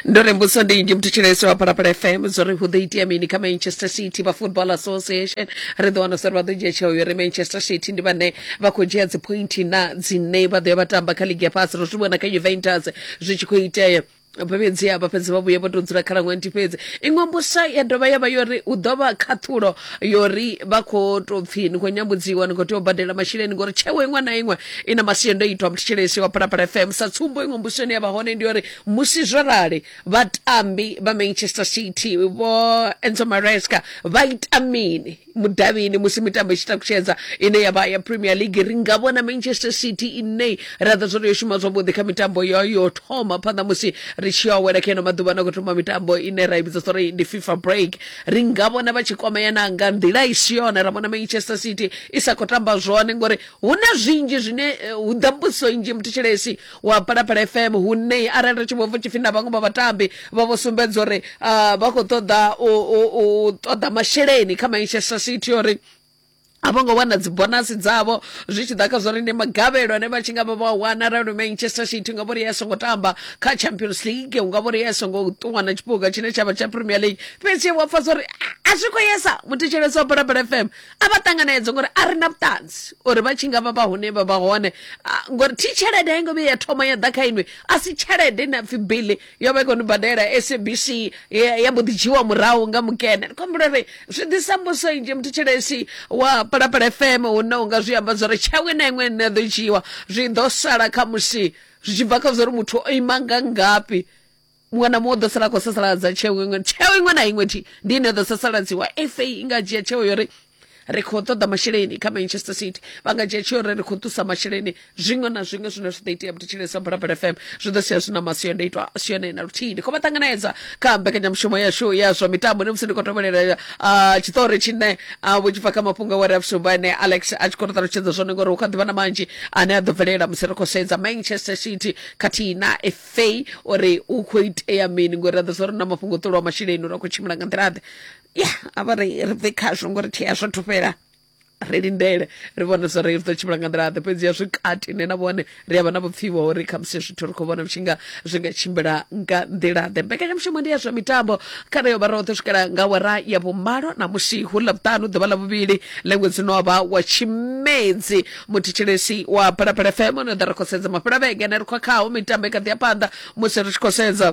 ndo ri mbudziso ndi nnzhi muthu tshilaisi wa phalaphala fm zwo ri hu ḓo itea mini kha manchester city vha football association ri ḓo wana sori vha ḓo dzhia tsheo yo ri manchester city ndi vhane vha khou dzhia dzipointi na dzine vha ḓo ya vha tamba kha ligi ya fhasi ro zwi vhona kha juventus zwi tshi khou itea fhedzi a vha fhedzi vha vhuye vho tou dzula kha ḽa ṅwenti fhedzi iṅwe mbusa ya dovha ya vha yo ri hu ḓo vha khaṱhulo yori vha khou tou pfhi ni khou nyambudziwa ni khou tea u badela masheleni ngori tsheo iṅwe na iṅwe i na masiandoitwa muthetshelesi wa phalaphala fm sa tsumbo iṅwe mbusweni ya vha hone ndi yori musi zwo rali vhatambi vha manchester city vho enzo maresca vha ita mini mudavhini musi mitambo i tshi takutshedza ine ya vha ya premier league ri nga vhona manchester city ine ra ḓo zwo yo shuma zwavhuḓi kha mitambo yo yo thoma phanḓa musi ri tshi yo awela kha ino maḓuvha na khou thoma mitambo ine ra i vhidza uri ndi fifa break ri nga vhona vha tshi kwamea na nga nḓila i si yone ra vhona manchester city i sa khou tamba zwone ngori hu na zwinzhi zwine eh, hu ḓa mbudziso nnzhi muthetshelesi wa phalaphala fm hune arali ri tshi vho pfa tshipfi na vhaṅwe vha vhatambi vha vho sumbedza uri ah, vha khou ṱoḓa u- u u ṱoḓa masheleni kha manchester city uri a vho ngo wana dzibonasi dzavho zwi tshi ḓa kha zwa uri ndi magavhelo ane vha tshi nga vha vha wana arali manchester city nga vhori ya songo tamba kha champions league unga vhori ya songo ṱuwa na tshiphuga tshine tsha vha tsha premier league fhedzi wa pfa uri a zwi khou yesa muthetshelesi wa balabala fm a vha ṱanganedza ngori a ri na vhuṱanzi uri vha tshi nga vha vha hune vha vha hone ngori thi tshelede a i ngo vhuya ya thoma ya ḓa kha inwi a si tshelede ine apfi bili yo vha i khou ni badela sabc ya mbo ḓi dzhiwa murahu nga mukene ndi khombula ri zwi ḓisa mbuso nnzhi muthu tshelesi wa palapala fm hu na unga zwi amba zwori tshawe na iṅwe nṋe ḓo dzhiwa zwi ḓo sala kha musi zwi tshi bva kha zwori muthu o ima nga ngafhi muṅwe na muṅwe u ḓo sala a khou sasaladza tsheo iṅwe tsheo iṅwe na iṅwe thi ndi ine ḓo sasaladziwa fa i nga dzhia tsheo yori ri khou ṱoḓa masheleni kha manchester city vha nga dzhia tsheo uri ri khou ṱusa masheleni zwiṅwe na zwiṅwe zwine zwi ḓo itea vhutshilele sa bulabula fm zwi ḓo sia zwi na masiandoitwa a si yone na luthihi ndi khou vha ṱanganedza kha mbekanyamushumo yashu ya zwa mitambo ndi musi ndi khou tovhelela tshiṱori tshine vho tshi bva kha mafhungo aware a vhusumbu ane alex a tshi khou ri ṱalutshedza zwone ngori hu kha ḓivha na manzhi ane a ḓo bvelela musi ri khou sedza manchester city khathihi na fa uri hu khou itea mini ngori ra ḓo sa ri na mafhungo ṱolwa masheleni uri a khou tshimbila nga nḓila ḓe ya a vha ri ri bve khazwo ngori thi azwo thu fhela ri lindele ri vhone zwa ri ri ḓo tshimbila nga nḓila ḓe fhedzi ya zwi kati ne na vhone ri a vha na vhupfiwa uri khamusi zwithu ri khou vhona zwi nga zwi nga tshimbila nga nḓila ḓe mbekanyamushumo ndi ya zwa mitambo kha ri yo vha roṱhe swikela nga wara ya vhumalo na musi hu ḽa vhuṱanu ḓuvha ḽa vhuvhili ḽa ṅwedzi no vha wa tshimedzi muthetshelesi wa phalaphala fm no ḓa ri khou sedza mafhela vhege ne ri khou khaho mitambo i kha ḓi ya phanḓa musi ri tshi khou sedza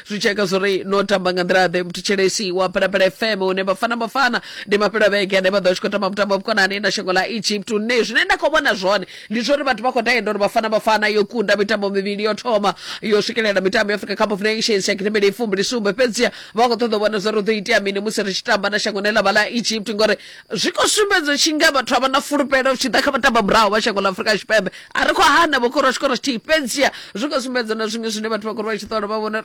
zwi tshi eka zwori no tamba nga nḓila ḓe mthetshelesi wa phalaphala fm hune vhafana vhafana ndi mafhelo a vhege ane vha ḓo vha tshi khou tamba mutambo wa vhukonani na shango ḽa egypt hune zwine nda khou vhona zwone ndi zwori vhathu vha khou tenda uri vhafana vhafana yo kunda mitambo mivhili yo thoma yo swikelela mitambo ya africa cup of nations ya gidimele i fumbili sumbe fhedziha vha khou ṱoḓa u vhona zwori hu ḓo itea mini musi ri tshi tamba na shango ne ḽa vha ḽa egypt ngori Zwi khou sumbedza tshi nga vhathu a vha na fulufhelo tshi ḓa kha vhatamba murahu vha shango ḽa Afrika Tshipembe a ri khou hana vho khorwa tshikoro tshithihi fhedziha zwi khou sumbedza na zwiṅwe zwine vhathu vha khou ri vha tshi ṱola vha vhona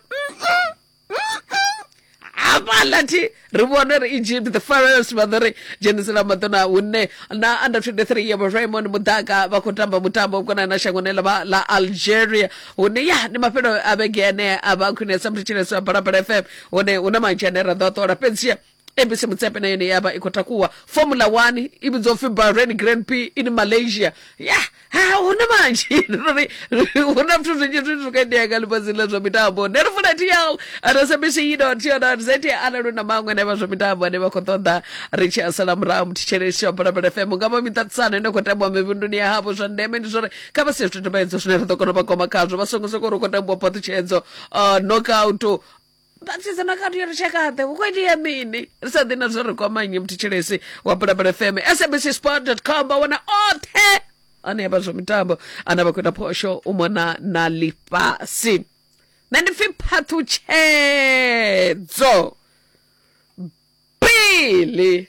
hafhaḽa thi ri vhone ri egypt the first vha ḓo ri dzhenisela maḓona hune na under 23 ya raymond mudaka vha khou tamba mutambo vhukona na shangoni ḽa vha- ḽa algeria hune ya ndi mafhelo a vhege ane a vha khwinesa mthetshelesi wa balabala fm hone hu na manzhi ane ra ḓo a ṱola fhedziha abc mutsepe na yone ya vha i khou takuwa formula 1 i vhidzwa upfi bahrain grand p in malaysia ya ha hu na manzhi ri hu na zwithu zwinzhi zwine zwi khou itea nga ḽifhasi ḽa zwa mitambo ndi ri funa tl rsabc dot co dot za arali hu na maṅwe ane vha zwa mitambo ane vha khou ṱoḓa ri tshi a sala murahu muthetshelesi tsha balabala fm nga vha miṱaṱisano ine khou tambiwa mivhunduni ya havho zwa ndeme ndi zwori kha vha si zwithu tumbedzo zwine ra ḓo kona u vha goma khazwo vha songo soko ri khou tambiwa phaṱhutshedzo knockout vhasidzana khathi ya lushakaḓe hu khou itea mini ri sa ḓi na zwo ri kwamanye mthetshelesi wa bulabula fm sabc sport com vha wana oṱhe ane avha zwa mitambo ane vha khou ita phosho u mona na ḽifhasi nṋe ndi pfi phaṱhutshedzo bili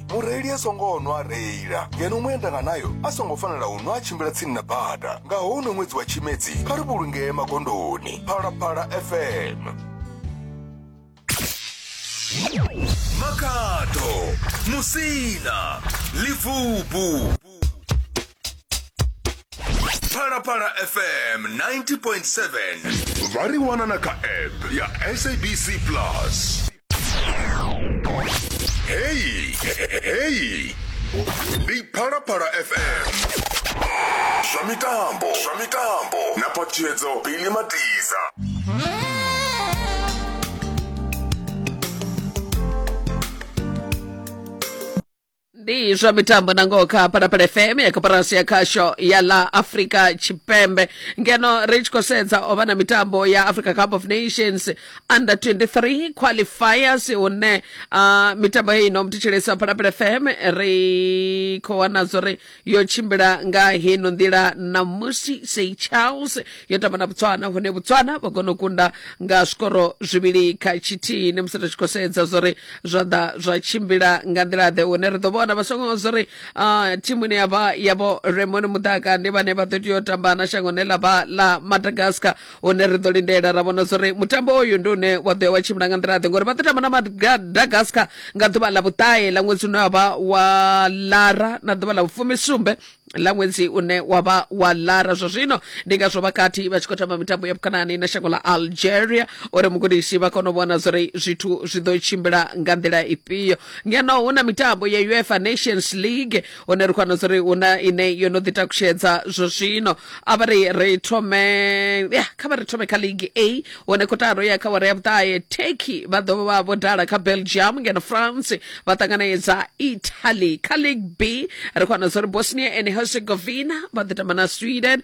mureili a songo nwa a reila ngeno muendanganayo a songo fanela u nwa a tshimbila tsini na bada nga houno ṅwedzi wa tshimedzi kha ri vhulungee magondoni phalaphala fm makhado musina livubu phalaphala fm 90.7 vha ri wana na kha app ya sabc plus Hey, hey. Ndi Phalaphala FM. Zwa mitambo, zwa mitambo. Na phatshedzo Billy Matiza. ndi zwa mitambo na ngoho kha phalaphala fm ya koporasi ya khasho ya la afrika tshipembe ngeno ri tshi khou sedza o vha na mitambo ya africa cup of nations under 23 qualifiers hune uh, mitambo heyi ino mthetshelesi wa phalaphala fm ri khou wana zwo ri yo tshimbila nga heno nḓila ṋamusi sei charles yo tamba na botswana hune botswana vha kona u kunda nga zwikoro zwivhili kha tshithihi ndi musi ri tshi khou sedza zwori zwa ḓa zwa tshimbila nga nḓila ḓe hune ri ḓo vhona vha songo zwori ah, thimu ine yavha yavho remoni muḓaka ndi vhane vha ḓo tea u tamba na shango ne ḽa vha ḽa madagascar hune ri ḓo lindela ra vhona zwori mutambo oyu ndi une wa ḓo ya wa tshimbila nga nḓila ḓe ngori vha ḓo tamba na madagascar nga ḓuvha ḽa vhuṱahe ḽa ṅwedzi une wa vha wa lara na ḓuvha ḽa vhufumisumbe ḽa ṅwedzi une wa vha wa lara zwa zwino ndi ngazwo vha kati vha tshi khou tamba mitambo ya vhukonani na shango ḽa algeria uri mugudisi vha kone u vhona zwori zwithu zwi ḓo tshimbila nga nḓila ifhio ngeno hu na mitambo ya uefa nations league hone ri khwana uri hu na ine yo no ḓi takushedza zwo zwino a vha ri ri thome ya kha vha ri thome kha league a hone kotaro ya kha wara ya vhuṱahe turkey vha ḓo vha vho dala kha belgium ngeno france vha ṱanganedza italy kha league b ri khwana uri bosnia and herzegovina vha ḓo tamba na sweden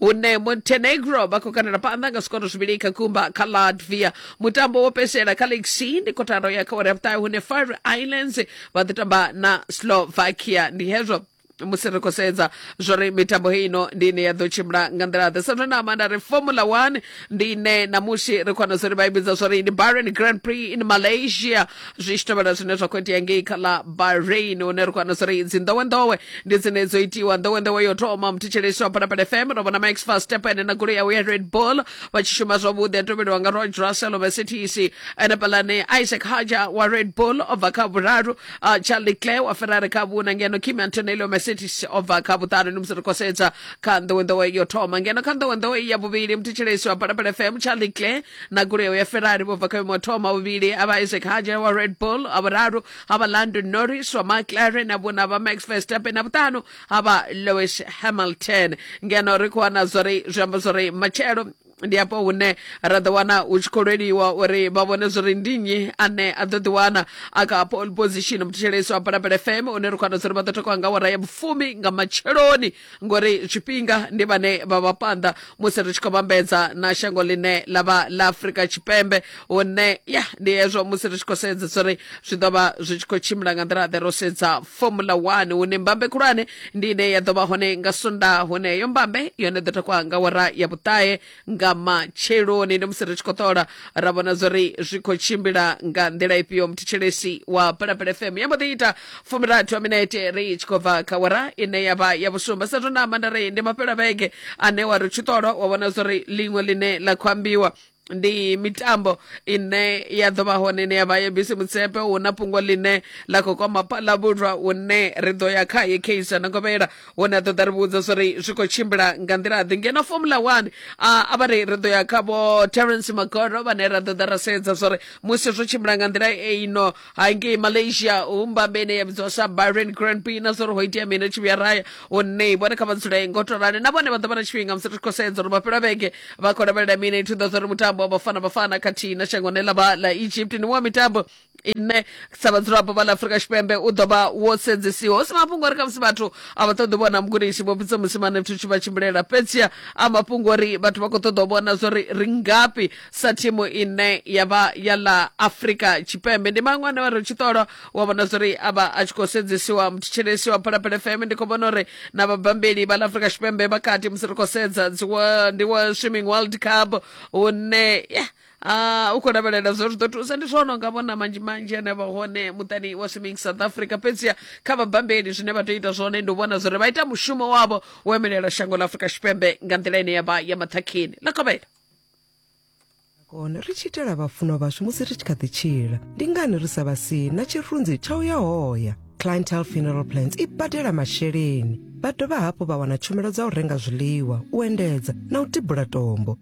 hune montenegro vha khou kandela phanḓa nga zwikoro zwivhili kha gumba kha latvia mutambo wo fhedzisela kha league c ndi kotaro ya kha wari ya vhuṱahe hune fire islands vha ḓo tamba na slovakia ndi hezwo musi ri khou sedza zwo ri mitambo heyi ino ndi ine ya ḓo tshimbila nga nḓila ḓe sathona amanda ri formula one ndi ine namusi ri khona zwo ri vha i vhidza zwo ri ndi barren grand prix in malaysia zwishitovhela zwine zwa khou itea ngei kha ḽa bahrain hune ri khou wana zwo ri idzi nḓowenḓowe ndi dzine dzo itiwa nḓowenḓowe yo thoma muthetshelesi wa phalaphala fm ro vhona max verstappen na goloi yawe ya red bull vha tshi shuma zwavhuḓi a tovheliwa nga roge russell wa mercedes ene palane isaac haja wa red bull o bva kha vhuraru ah, charlie clay wa ferrari kha vhuna ngeno kim antonelli wa mercedes o bva kha vhuṱanu ndi musi ri khou sedza kha nḓowenḓowe yo thoma ngeno kha nḓowenḓowe ya vhuvhili muthetshelesi wa phalaphala fm charlie clay na goloi yao ya ferrari vho bva kha vhuimo ha thoma vhuvhili a vha isaac haja wa red bull a vhuraru ha vha london norris wa mclaren na vhuna vha max verstappen na vhuṱanu ha vha lewis hamilton ngeno ri khou wana zwori zwi amba zwori matshelo ndi afho hune ra ḓo wana hu tshi khou lweliwa uri vha vhone zwori ndi nnyi ane a ḓo ḓiwana a kha pole position muthetshelesi wa palapele fm une ri khou wana zwori vha ḓo takuwa nga wara ya vhufumi nga matsheloni ngori tshifhinga ndi vhane vha vha phanḓa musi ri tshi khou vhambedza na shango ḽine ḽa vha ḽa afurika tshipembe hune ya ndi hezwo musi ri tshi khou sedzesa uri zwi ḓo vha zwi tshi khou tshimbila nga nḓila ḓe ro sedza formula one hune mbambe khulwane ndi ine ya ḓo vha hone nga sonda hune heyo mbambe yone ḓo takuwa nga wara ya vhuṱahe nga matsheloni ndi musi ri tshi khou ṱola ra vhona zwori zwi khou tshimbila nga nḓila ifhio muthetshelesi wa palapala fm ya mbo ḓi ita fumirathu a minete ri tshi khou bva kha wara ine ya vha ya vhusumba sa zwo na amba nda ri ndi mafhelo a vhege ane wa ri tshi ṱola wa vhona zwori ḽiṅwe ḽine ḽa khou ambiwa ndi mitambo ine ya ḓo vha hone ine ya vha ya bisi mutsepe hu na fhungo ḽine ḽa khou kwama palavhulwa hune ri ḓo ya khaye kaizer na govhela hone a ṱoḓa ri vhudza zwo ri zwi khou tshimbila nga nḓila ḓi ngeno formula one a vha ri ri ḓo ya kha vho terence magoro vhane ra ḓoḓa ra sedza zwo ri musi zwo tshimbila nga nḓila eino hangei malaysia hu mbambe ine ya vhidziwa sa byron grand p na zwo ri ho itea mini ri tshi vhuya raya hone vhone kha vha dzule ngo to rali na vhone vha ḓo vha na tshifhinga musi ri khou sedza uri vha fhela vhege vha khou lavhelela mini i thuḓa zwo ri mutambo wa bafana bafana khathihi na shangoni ḽa vha ḽa egypt ni wa mitambo nṋe sa vhadzulapo vha ḽa afurika tshipembe u ḓo vha wo sedzisiwa hu si mafhungo uri khamusi vhathu a vha ṱoḓi vhona mugudisi vho fhidza musimane zwithu tshi vha tshimbilela fhedzia a mafhungo uri vhathu vha khou ṱoḓa u vhona zwori ri ngafhi sa thimu ine ya vha ya ḽa afurika tshipembe ndi maṅwe ane vha ri tshi ṱolwa wa vhona zwori a vha a tshi khou sedzisiwa mutshitshilisi wa phalaphala fm ndi khou vhona uri na vhabambeli vha ḽa afurika tshipembe vha kati musi ri khou sedza dzi wa- ndi wa swimming world cup hune yeah, Ah, u khou lavhelela zwo zwi ḓo thusa ndi zwone unga vhona manzhi manzhi ane vha hone muṱani wa swimming south africa fhedziha kha vhabambeli zwine vha tea u ita zwone ndi u vhona zwori vha ita mushumo wavho wo emelela shango ḽa afurika tshipembe nga nḓila ine ya vha ya maṱhakheni ḽa kovhela kone ri tshi itela vhafunwa vhashu musi ri tshi kha ḓi tshila ndi ngani ri sa vha si na tshirunzi tsha u ya hoya clientele funeral plans i badela masheleni vha dovha hafhu vha wana tshumelo dza u renga zwiḽiwa u endedza na u tibula tombo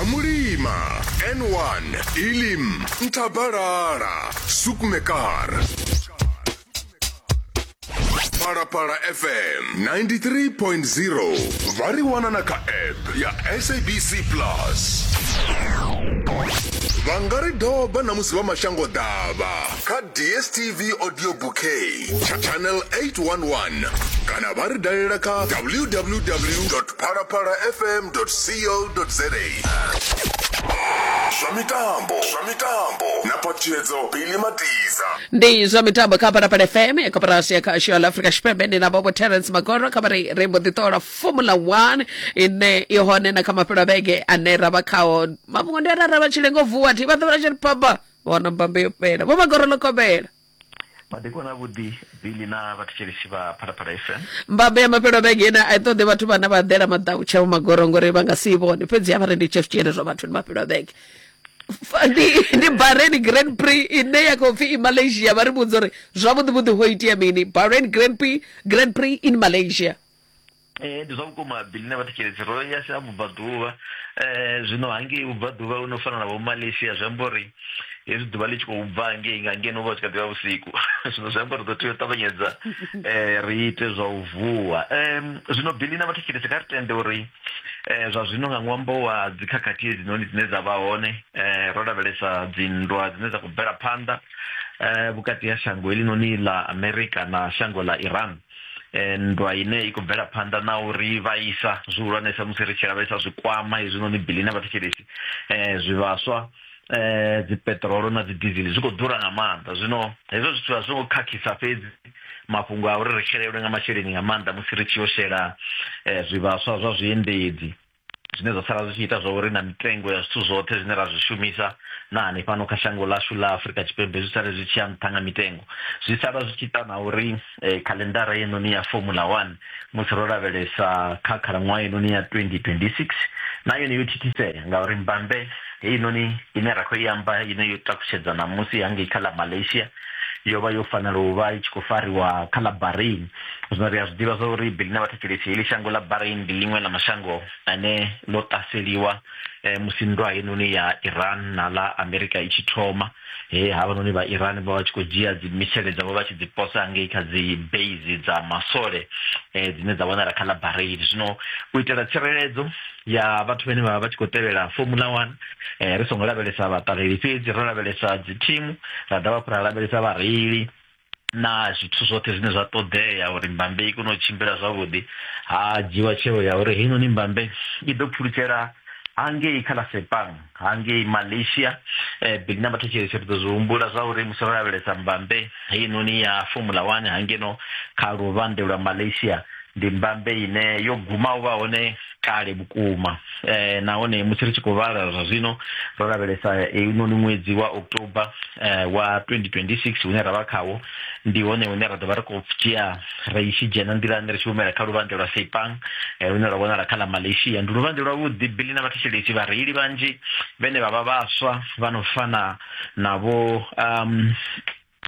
amulima n1 ilim ntabalala sukmekar phalaphala fm 93.0 vha ri wana na kha app ya sabc plus vha nga ri doba na musi vha mashango ḓavha kha dstv audio bouquet tsha channel 811 kana vha ri dalela kha www phalaphala fm co za zwa mitambo zwa mitambo na phatshedzo bili matiza ndi zwa mitambo kha phalaphala fm ya koporasi ya khasho ya la afrika tshipembe ndi na vhobo terence magoro kha vhari ri mbo ḓi ṱola formula 1 ine i hone na kha mafhelo a vhege ane ra vha khao mafhungo ndi arara vha tshi lengo vuwa thi vha ḓo vha tshi ri papa vhona mbambe yo fhela vho magoro ḽo kobela madekwana avhuḓi bili na vhathetshelesi vha phalaphala fm mbambe ya mafhelo a vhege ine a i ṱoḓi vhathu vhane vha ḓela maḓau tsheo magoro ngori vha nga si i vhone fhedzi avha rendi chef tshiene zwa vhathu ndi mafhelo a vhege Fa- ndi ndi bahrain grand prix ine ya khou pfi i malaysia vha ri vhudza uri zwavhuḓivhuḓi ho itea mini bahrain grand prix grand prix in malaysia ee ndi zwa vhukuma bili na vhathetshelesi ro ya sa vhubvaḓuvha um zwino hangei vhubvaḓuvha u no fana na vho malaysia zwi amba uri hezwi ḓuvha ḽi tshi khou bva hangei nga ngeno vha tshi kha ḓivha vhusiku zwino zwi amba ri ḓo tea u ṱavhanyedza um ri ite zwa u vuwa um zwino bili na vhathetshelesi kha ri tende uri um zwa zwino nga ṅwambo wa dzikhakhathi hedzinoni dzine dza vha hone um ro lavhelesa dzinndwa dzine dza khou bvela phanḓa um vhukati ha shango helinoni ḽa amerika na shango ḽa iran eh, nndwa ine i khou bvela phanḓa na uri vha isa zwihulwanesa musi ri tshi lavhelesa zwikwama hezwinoni bili na vhathetshelesi um zwivhaswa eh dzi petrol na dzi diesel zwi kho ḓura nga maanḓa zwino hezwo zwithu a zwi ngo khakhisa fhedzi mafhungo a uri ri xelelwe nga masheleni nga maanḓa musi ri tshi yo shela eh, zwivhaswa zwa zwiendedzi zwine zwa sala zwi tshi ita zwa uri na mitengo ya zwithu zwoṱhe zwine ra zwi shumisa na hanefhano kha shango ḽashu ḽa afurika tshipembe zwi sale zwi tshi ya nṱha nga mitengo zwi sala zwi tshi ita na uri eh, khalendara yenoni ya formula one musi ro lavhelesa kha khalaṅwaha yenoni ya 2026 na yone yo thithisea ngauri mbambe heinoni ine ra khou i amba ine yo takutshedza ṋamusi hangei kha ḽa malaysia yo vha yo fanela u vha i tshi khou fariwa kha ḽa Bahrain zwino ri a zwi ḓivha zwa uri bili na vhathetshelesi heḽi shango ḽa Bahrain ndi ḽiṅwe ḽa mashango ane ḽo ṱaseliwa eh, musi nndwa heinoni ya Iran na ḽa Amerika i tshi thoma he havhanoni vha Iran vha vha tshi khou dzhia dzi misele dzavho vha tshi dzi posa ngei kha dzi base dza masole eh, dzine dza wanala kha ḽa Bahrain zwino u itela tsireledzo ya vhathu vhane vha vha vha tshi khou tevhela formula one um ri songo lavhelesa vhaṱaleli fhedzi ro lavhelesa dzi thimu ra dovha hafhu ra lavhelesa vhareili na zwithu zwoṱhe zwine zwa ṱoḓea uri mbambe i kone u tshimbila zwavhuḓi ha dzhiwa tsheo ya uri heinoni mbambe i ḓo pfulutshela hangei kha ḽa sepang hangei malaysia eh, big number thetshelese ri ḓo zwi humbula zwa uri musi ro lavhelesa mbambe heinoni ya formula one hangeno kha luvhande lwa malaysia ndi mbambe ine yo guma u vha hone kale vhukuma eh, nahone musi ri tshi khou vhala zwa zwino ro lavhelesa heinoni ṅwedzi wa october eh, wa 2026 hune ra vha khawo ndi hone hune ra ḓo vha ri khou dzhia ra i tshi dzhena nḓilani ri tshi humela kha luvhanḓe lwa Sepang eh, lune lwa vhonala kha ḽa Malaysia ndi luvhanḓe lwavhuḓi bili na vhathetshelesi vhareili vhanzhi vhene vha vha vhaswa vha no fana na vho um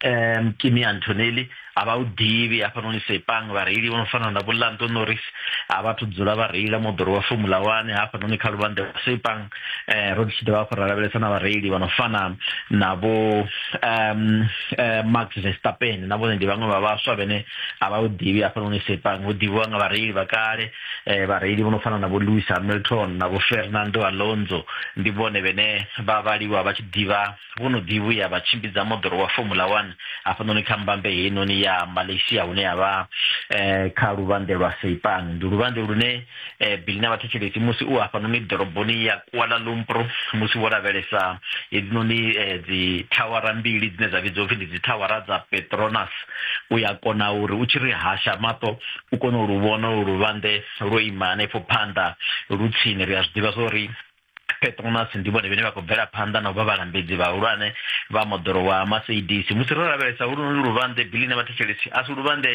um kimi antonelli a vha u ḓivhi hafhanoni sepang vhareili vho no fana na vho lando norris a vha thu dzula vha reila moḓoro wa formula one hafhanoni kha luvhanḓe lwa sepang eh, ro tshi dovha hafhu ra lavhelesa na vhareili vha no fana na vho um eh, max verstappen na vhone ndi vhaṅwe vha vhaswa vhene a vha u ḓivhi hafhanoni sepang hu ḓivhiwa nga vhareili vha kale um vhareili vho no fana na vho lewis hamilton na vho fernando alonso ndi vhone vhene vha vhaliwa vha tshi ḓivha vho no ḓi vhuya vha tshimbidza moḓoro wa Formula 1 hafhanoni kha mbambe heinoni ya Malaysia hune ya vha eh, kha luvhanḓe lwa Seipan ndi luvhanḓe lune eh, Billy na vhathetshelesi musi u hafhanoni ḓoroboni ya Kuala Lumpur musi wo lavhelesa hedzinoni eh, dzi thawara mbili dzine dza vhidzwa upfhi ndi dzi thawara dza Petronas u ya kona uri u tshi ri hasha maṱo u kone u lu vhona luvhanḓe lwo ima hanefho phanḓa lu tsini ri a zwi ḓivha zwa uri petronas ndi vhone vhene vha khou bvela phanḓa na u vha vhalambedzi vhahulwane vha moḓoro wa maseidisi musi ro lavhelesa hulunoni luvhanḓe bili na vhathetshelesi a si luvhanḓe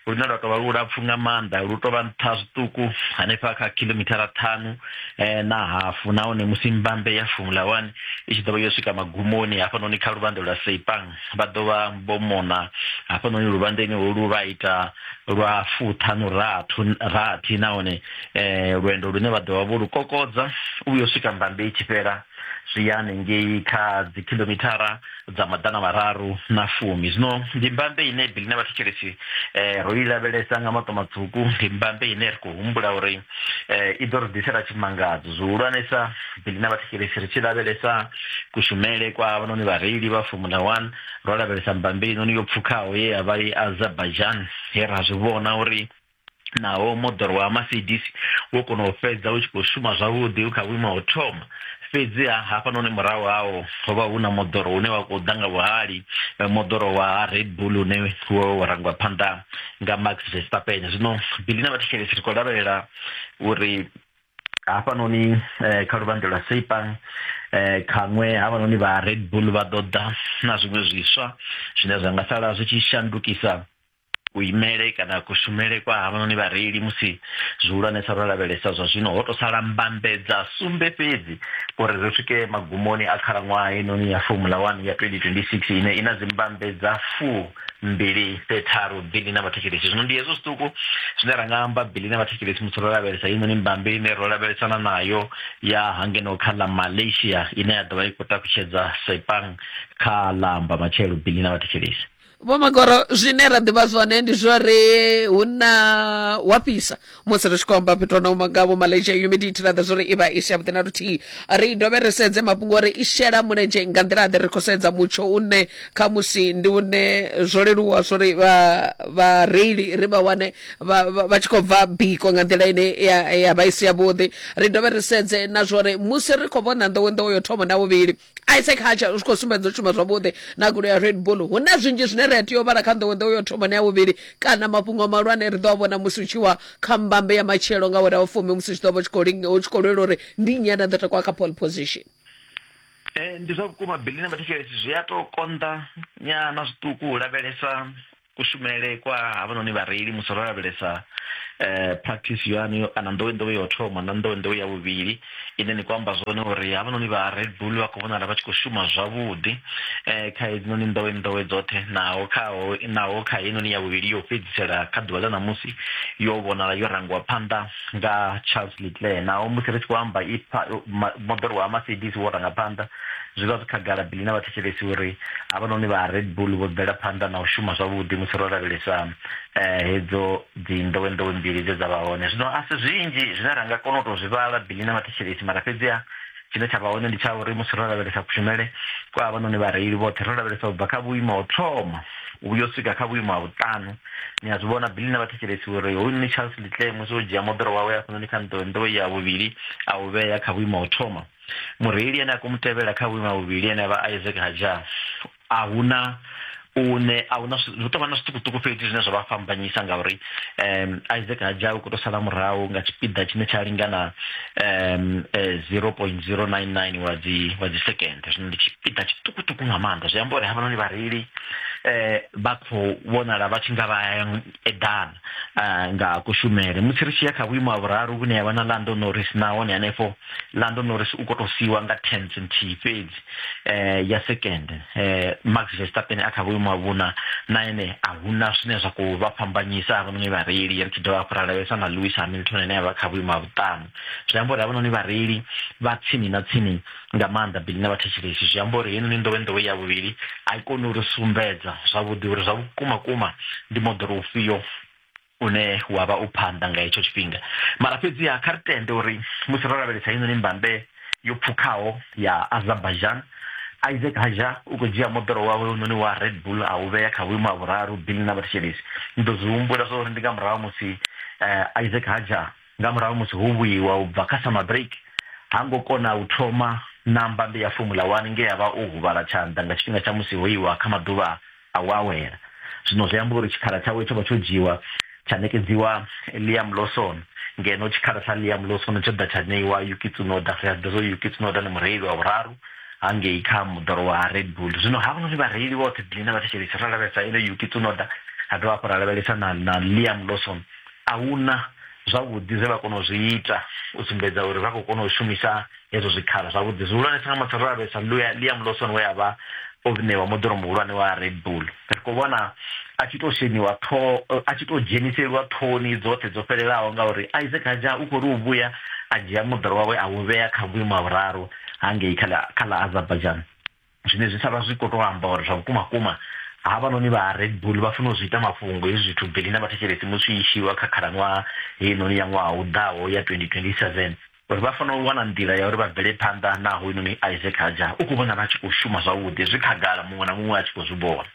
lune lwa tovha lulapfu nga maanḓa lu tovha nṱha zwiṱuku hanefha kha khilomithara ṱhanu eh, na hafu nahone musi mbambe ya formula one i tshi ḓovha yo swika magumoni hafhanoni kha luvhanḓe lwa seipang vha ḓo vha vho mona hafhanoni luvhandeni holu lwa ita lwa fuṱhanu rathu rathi nahone um lwendo lune vha ḓovha vho lu kokodza u vhuya u swika mbambe i tshi fhela zwi ya hanengei kha dzi khilomithara dza maḓana mararu na fumi zwino ndi mbambe ine bili na vhathetshelesi um ro i lavhelesa nga maṱo matswuku ndi mbambe ine ri khou humbula uri um i ḓo ri ḓisela tshimangadzo zwihulwanesa fhedzi na vhathetshelesi ri tshi lavhelesa kushumele kwa avhanoni vhareili vha formula one ro lavhelesa mbambili noni yo pfukhaho ye ya vha i azerbaijan he ra zwi vhona uri naho moḓoro wa mercedes wo kona u fhedza u tshi khou shuma zwavhuḓi u kha vhuimo ha u thoma fhedziha hafhanoni murahu hawo ho vha hu na moḓoro une wa khou ḓa nga vhuhali moḓoro wa red bull une wo rangwa phanḓa nga max verstappen zwino bili na vhathetshelesi ri khou lavhelela uri hafhanoni eh, kha luvhanḓe lwa sepang eh, khaṅwe havhanoni vha red bull vha ḓo ḓa na zwiṅwe zwiswa zwine zwa nga sala zwi tshi shandukisa kuimele kana kushumele kwa havhanoni vhareili musi zwihulwanesa ro lavhelesa zwa zwino ho to sala mbambedza sumbe fhedzi uri ri swike magumoni a khalaṅwaha inoni ya formula one ya 2026 ine i na dzimbambedza fuu mbili te tharu bili na vhathetshelesi zwino ndi hezwo zwiṱuku zwine ra nga amba bili na vhathetshelesi musi ro lavhelesa heinoni mbambe ine ro lavhelesana nayo ya hangeno kha ḽa malaysia ine ya ḓovha i khou takutshedza sepang kha ḽa amba matshelo bili na vhathetshelesi vho magoro zwine ra ḓivha zwone ndi zwori hu na wa fhisa musi ri tshi khou amba fhethu na uma nga vho malaysia humidity ra ḓa zwo ri i vha i si yavhuḓi na luthihi ri dovhe ri sedze mafhungo ori i shela mulenzhe nga nḓila ḓe ri khou sedza mutsho une khamusi ndi une zwo leluwa zwo ri vhareili ri vha wane vha tshi khou bva biko nga nḓila ine ya vha i si yavhuḓi ri dovhe ri sedze na zwo ri musi ri khou vhona nḓowenḓowe yo thoma na vhuvhili isaac hacha u tshi khou sumbedza u shuma zwavhuḓi na gulo ya red bull hu na zwinzhi zwine ri a tea u vhala kha nḓowenḓowe yo thomani ya vhuvhili kana mafhungo mahulwane ri ḓo a vhona musi u tshi wa kha mbambe ya matshelo nga wera wa fumi musi tshi ḓo vha u tshi khou lwela uri ndi nnyi ane a ḓo takuwa kha pole position eh, ndi zwa vhukuma bili na mathekhelesi zwi a tou konḓa nyana zwiṱuku u lavhelesa kushumele kwa havhanoni vhareili musi ro lavhelesa eh, practice yanu yo- kana nḓowenḓowe yo thoma na nḓowenḓowe ya vhuvhili ine ni khou amba zwone uri havhanoni vha red bull vha khou vhonala vha tshi khou shuma zwavhuḓi um kha hedzinoni nḓowenḓowe dzoṱhe naho khaho naho kha heinoni ya vhuvhili yo fhedzisela kha ḓuvha ḽa ṋamusi yo vhonala yo rangiwa phanḓa nga charles leclair naho musi ri tshi khou amba i pa- ma- moḓoro wa mercedes wo ranga phanḓa Zwi vha zwi khagala Billy na vhathetshelesi uri havhanoni vha Red Bull vho bvela phanḓa na u shuma zwavhuḓi musi ro lavhelesa hedzo dzinḓowenḓowe mbili dze dza vha hone. Zwino a si zwinzhi zwine ra nga kona u tou zwi vhala Billy na vhathetshelesi, mara fhedziha tshine tsha vha hone ndi tsha uri musi ro lavhelesa kushumele kwa havhanoni vhareili vhoṱhe, ro lavhelesa u bva kha vhuimo ha u thoma u vhuya u swika kha vhuimo ha vhuṱanu, ni a zwi vhona Billy na vhathetshelesi uri hoyunoni Charles Leclerc musi o dzhia moḓoro wawe hafhanoni kha nḓowenḓowe ya vhuvhili a u vhea kha vhuimo ha u thoma, mureili ane a khou mu tevhela kha vhuima vhuvhili ane a vha isaac hajar a huna une a huna hu tovha na zwiṱukuṱuku fhedzi zwine zwa vha fhambanyisa ngauri um isaac hajar u khou tou sala murahu nga tshipiḓa tshine tsha lingana um eh, 0.099 wa dzi wa dzi second zwino ndi tshipiḓa tshiṱukuṱuku nga maanḓa zwi amba uri havhanoni vhareili eh vha khou vhonala vha tshi nga vha ya edan uh, nga kushumele musi ri tshi ya kha vhuimo ha vhuraru vhune yavha na lando norris nahone hanefho lando norris u khou tou siiwa nga tens nthihi fhedzi um ya second um max vestapen a kha vhuimo ha vhuna na ene a huna zwine zwa khou vha fhambanyisa havhanoni vhareili ri tshi dovha hafhu ra lavhelesa na lewis hamilton ane a vha kha vhuimo ha vhuṱanu zwi amba uri havhanoni vhareili vha tsini na tsini nga maanḓa bili na vhathetshelesi zwi amba uri heinoni nḓowenḓowe ya vhuvhili a i koni uri sumbedza zwavhuḓi uri zwa vhukuma kuma ndi moḓoro ufhio une wa vha u phanḓa nga hetsho tshifhinga mara fhedziha kha ri tende uri musi ro lavhelesa heinoni mbambe yo pfukhaho ya azerbaijan isaac haja u khou dzhia moḓoro wawe unoni wa red bull a u vhea kha vhuimo ha vhuraru bili na vhathetshelesi ndi ḓo zwi humbula zwa uri ndi nga murahu musi eh, isaac haja nga murahu musi ho vhuiwa u bva kha summer break, ha ngo kona u thoma na mbambe ya Formula One nge a vha o huvhala tshanḓa nga tshifhinga tsha musi ho iwa kha maḓuvha a u awela. Zwino zwi amba uri tshikhala tshawe tsho vha tsho dzhiiwa tsha ṋekedziwa Liam Lawson, ngeno tshikhala tsha Liam Lawson tsho ḓa tsha ṋeiwa Yuki Tsunoda. Ri a ḓivha zwa uri Yuki Tsunoda ndi mureili wa vhuraru hangei kha moḓoro wa Red Bull. Zwino havhanoni vhareili vhoṱhe, Belinda na thetshelesi, ro lavhelesa ene Yuki Tsunoda, ra dovha hafhu ra lavhelesa na, na Liam Lawson. a huna zwavhuḓi zwe vha kona u zwi ita u sumbedza uri vha khou kona u shumisa hezwo zwikhala zwavhuḓi zwihulwanesa nga matsha ro lavhelesa liam lawson we a vha o ṋewa moḓoro muhulwane wa red bull ri khou vhona a tshi tou sheniwa ṱhoho a tshi tou dzheniseliwa ṱhoni dzoṱhe dzo fhelelaho ngauri isaac haja u khou ri u vhuya a dzhia moḓoro wawe a u vhea kha vhuimo ha vhuraru hangei kha ḽa azerbaijan zwine zwi sa vha zwi khou tou amba uri zwa vhukuma kuma havhanoni vha red bull vha funa u zwi ita mafhungo hezwi zwithu beli na vhathetshelesi musi i shiwa kha khalaṅwaha heinoni ya ṅwaha u ḓaho ya 2027 uri vha fanela u wana nḓila ya uri vha bvele phanḓa naho hoyunoni isaac haja u khou vhona vha tshi khou shuma zwavhuḓi zwi khagala muṅwe na muṅwe a tshi khou zwi vhona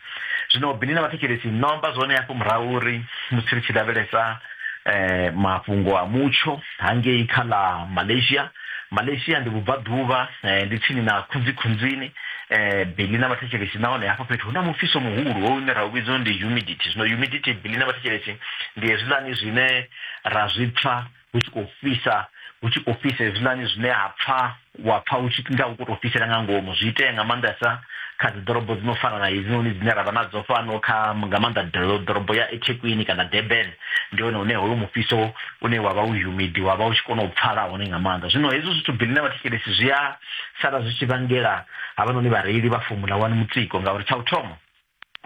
zwino bini na vhathetshelesi no amba zwone hafho murahu uri musi ri tshi lavhelesa um mafhungo a mutsho hangei kha ḽa malaysia malaysia ndi vhubvaḓuvha eh, ndi tsini na khunzikhunzini eh, bili na vhathetshelesi nahone hafha fhethu hu na mufhiso muhulu wo une ra u vhidza uri ndi humidity zwino humidity bili na vhathetshelesi ndi hezwiḽani zwine ra zwi pfa hu tshi khou fhisa hu tshi khou fhisa hezwiḽani zwine ha pfa wa pfa hu tshi nga hu khou tou fhisela nga ngomu zwi itea nga maanḓesa kha dzi ḓorobo dzi no fana na hedzinoni dzine ra vha nadzo fhano kha nga maanḓa doro- ḓorobo ya ethekwini kana durban ndi hone hune hoyo mufhiso une wa vha u humidi wa vha u tshi kona u pfala hone nga maanḓa zwino hezwi zwithu bili na vhathetshelesi zwi a sala zwi tshi vhangela havhanoni vhareili vha fomula wani mutsiko ngauri tsha u thoma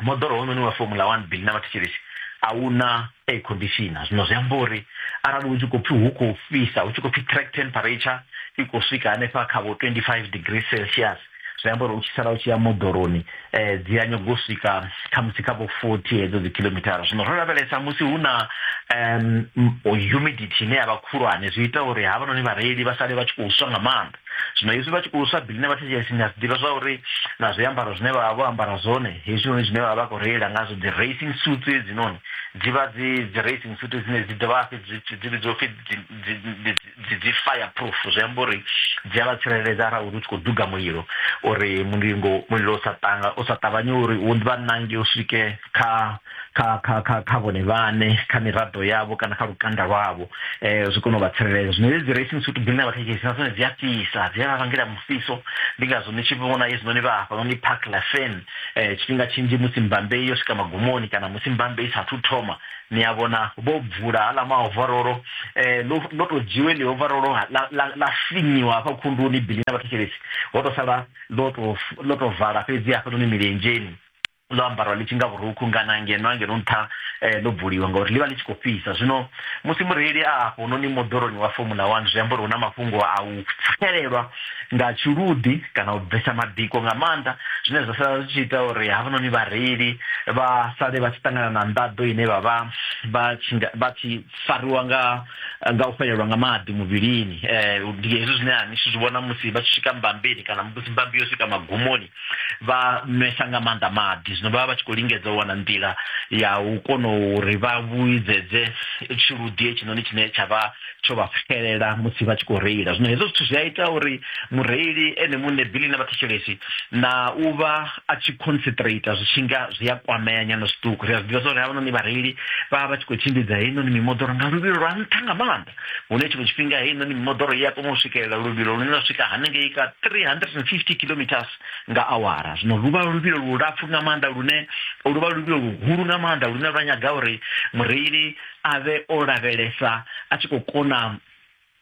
moḓoro wononi wa fomula wani bili na vhathetshelesi a hu na air conditioner zwino zwi amba uri arali hu tshi khou pfhi hu khou fhisa hu tshi khou pfhi track temperature i khou swika hanefha kha vho 25 degree celsius zwi amba uri u tshi sala u tshi ya moḓoroni um dzi a nyago u swika khamusi kha vho forty hedzo dzi khilomithara zwino ro lavhelesa musi hu na um humidity ine ya vha khulwane zwi ita uri havhanoni vhareili vha sale vha tshi khou swa nga maanḓa zwino hezwi vha tshi khou swa biḽi na vhathetshelesi ni a zwi ḓivha zwa uri na zwiambaro zwine vha vha vho ambara zwone hezwinoni zwine vha vha vha khou reila ngazwo dzi racing suits hedzinoni dzi vha dzi dzi racing suit dzine dzi dovha hafhi dzi vhidziwa pfhi dzi dzi fire proof zwi amba uri dzi a vha tsireledza arali uri u tshi khou duga mulilo uri mulingo mulilo u sa tanga u sa ṱavhanye uri u vha nange u swike kha kha kha kha kha vhone vhane kha miraḓo yavho kana kha lukanda lwavho eh zwi kone u vha tsireledza zwino hedzi racing suit dzine vha thekhisi na dzone dzi a fhisa dzi a vha vhangela mufhiso ndi ngazwo ni tshi vhona hezwinoni vha hafha noni park la fan eh tshifhinga tshinzhi musi mbambe yo swika magumoni kana musi mbambe i sa thu thoma ni a vhona vho bvula hala maovarolo eh ḽo ḽo to dzhiwe ḽi ovarolo ha- ḽa ḽa- ḽa finyiwa hafha khunduni bili na vhathetshelesi ho to sala ḽo to f- ḽo to vala fhedzi hafhanoni milenzheni ḽo ambarwa ḽi tshi nga vhurukhu ngana ngeno angeno nṱha eh, ḽo bvuliwa ngauri ḽi vha ḽi tshi khou fhisa zwino musi mureili a hafhononi moḓoroni wa formula one zwi amba uri hu na mafhungo a u pfhelelwa nga tshiluḓi kana u bvesa mabiko nga maanḓa zwine zwa sala zwi tshi ita uri havhanoni vhareili vha sale vha tshi ṱangana na nḓaḓo ine vha vha vha tshi vha tshi fariwa nga nga u fhelelwa nga maḓi muvhilini um ndi hezwi zwine a ni tshi zwi vhona musi vha tshi swika mbambeni kana musi mbambi yo swika magumoni vha nwesa nga maanḓa maḓi zwino vha vha vha tshi khou lingedza u wana nḓila ya u kona uri vha vhuidzedze tshiluḓi hetshinoni tshine tsha vha tsho vha pfikelela musi vha tshi khou reila zwino hezwo zwithu zwi a ita uri mureili ene muṋe bili na vhathetshelesi na u vha a tshi concentrate zwi tshi nga zwi a kwamea nyana zwiṱuku ri a zwi ḓivha zwa uri havhanoni vhareili vha vha vha tshi khou tshimbidza heinoni mimoḓoro nga luvhilo lwa nṱha nga maanḓa hune tshiṅwe tshifhinga heinoni mimoḓoro i a kona u swikelela luvhilo lune lwa swika hanengei ka 350 kilometers nga awara zwino lu vha luvhilo lulapfu nga maanḓa lune lu vha luvhilo luhulu nga maanḓa lune lwa nyaga uri mureili a vhe o lavhelesa a tshi khou kona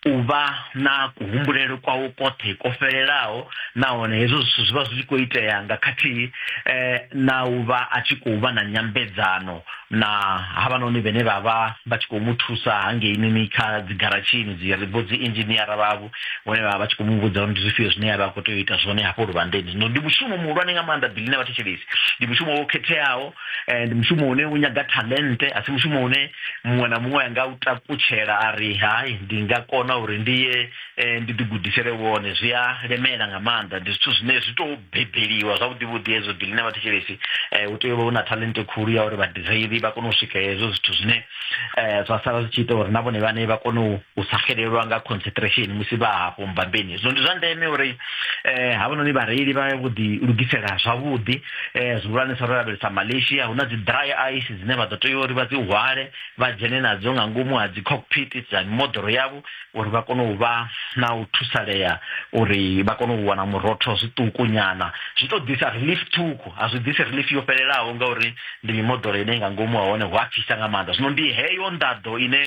u vha na kuhumbulele kwawo kwoṱhe ko fhelelaho nahone hezwo zwithu zwi vha zwi tshi khou itea nga khathihi eh, na u vha a tshi khou vha na nyambedzano na havhanoni vhene vha vha vha tshi khou mu thusa hangeini kha dzigaratshini dzi ri vho dzi inzhiniara vhavho vhone vha vha vha tshi khou mu vhudza uri ndi zwifhio zwine ya vha a khou tea u ita zwone hafho luvhandeni zwino ndi mushumo muhulwane nga maanḓa bili na vhathetshelesi ndi mushumo wo khetheaho and mushumo une u nyaga talente a si mushumo une muṅwe na muṅwe anga u takutshela a ri hai ndi nga kona uri ndi ye eh, ndi ḓigudisele wone zwi a lemela nga maanḓa ndi zwithu zwine zwi tou bebeliwa zwavhuḓi vhuḓi hezwo dili na vhathetshelesi eh, u tea u vha u na talente khulu ya uri vhadireli vha kone u swika hezwo zwithu zwine eh, zwa sala zwi tshi ita uri na vhone vhane vha kone u sa xelelwa nga concentration musi vha hafho mbambeni zwino ndi zwa ndeme uri eh, havhanoni vhareili vha vho ḓi lugisela zwavhuḓi um zwihulwanesa ro lavhelesa malaysia hu na dzi dry ice dzine vha ḓo tea uri vha dzi hwale vha dzhene nadzo nga ngomu ha dzi cockpit dza mimoḓoro yavho uri vha kone u vha na u thusalea uri vha kone u wana murotho zwiṱuku nyana zwi to ḓisa relief ṱhukhu a zwi ḓisi relief yo fhelelaho ngauri ndi mimoḓoro ine nga ngomu ha hone hu a fhisa nga maanḓa zwino ndi heyo nḓaḓo ine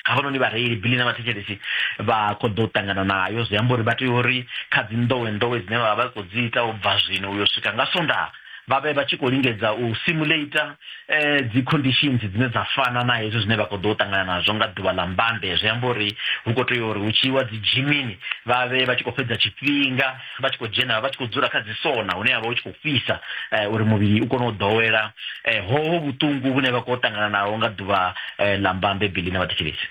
havhanoni vhareili bili na vhathetshelesi vha khou ḓo ṱangana nayo zwi amba uri vha tea uri kha dzi nḓowe nḓowe dzine vha vha khou dzi ita u bva zwino uyo swika nga sonda vha vhe vha tshi khou lingedza u simulator um eh, dzi conditions dzine dza fana na hezwi zwine vha khou ḓo ṱangana nazwo nga ḓuvha ḽa mbambe zwi amba uri hu khou tea uri hu tshi iwa dzi dzhimini vha vhe vha tshi khou fhedza tshifhinga vha tshi khou dzhena vha tshi khou dzula kha dzi sona hune havha hu tshi khou fhisa eh, uri muvhili u kone u ḓowela eh, hoho vhuṱungu vhune vha khou ṱangana naho nga ḓuvha eh, ḽa mbambe bili na vhathetshelesi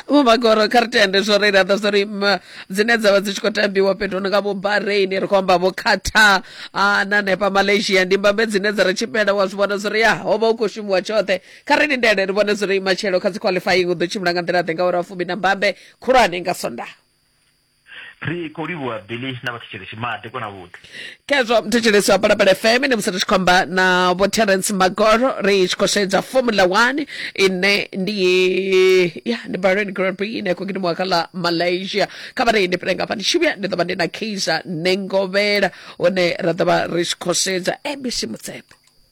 vho magoro kha ri tende zwo ri laḓa zwo ri mm, dzine dza vha dzi tshi khou tambiwa fhethu no nga vho bahrain ri khou amba vho qatar ah, na nepa malaysia ndi mbambe dzine dza ri tshipela wa zwi vhona zwo ri ya ho vha hu khou shumiwa tshoṱhe kha ri lindele ri vhone zwo ri matshelo kha dzi qualifying u ḓo tshimbila nga nḓila ḓe nga uri a fumi na mbambe khulwane nga sondaha ri khou livhuwa billy na vhathetshelesi maḓi kona vhuḓi khezwo mthetshelesi wa balabala fm ndi musi ri tshi khou amba na vho terence magoro ri tshi khou sedza formula one ine ndi ya ndi bahrain grand prix ine khou gidimiwa kha ḽa malaysia kha vha reine pele ngafha ndi tshi vhuya ndi ḓo vha ndi na kaiser nengovhela hune ra ḓo vha ri tshi khou sedza abc mutsepe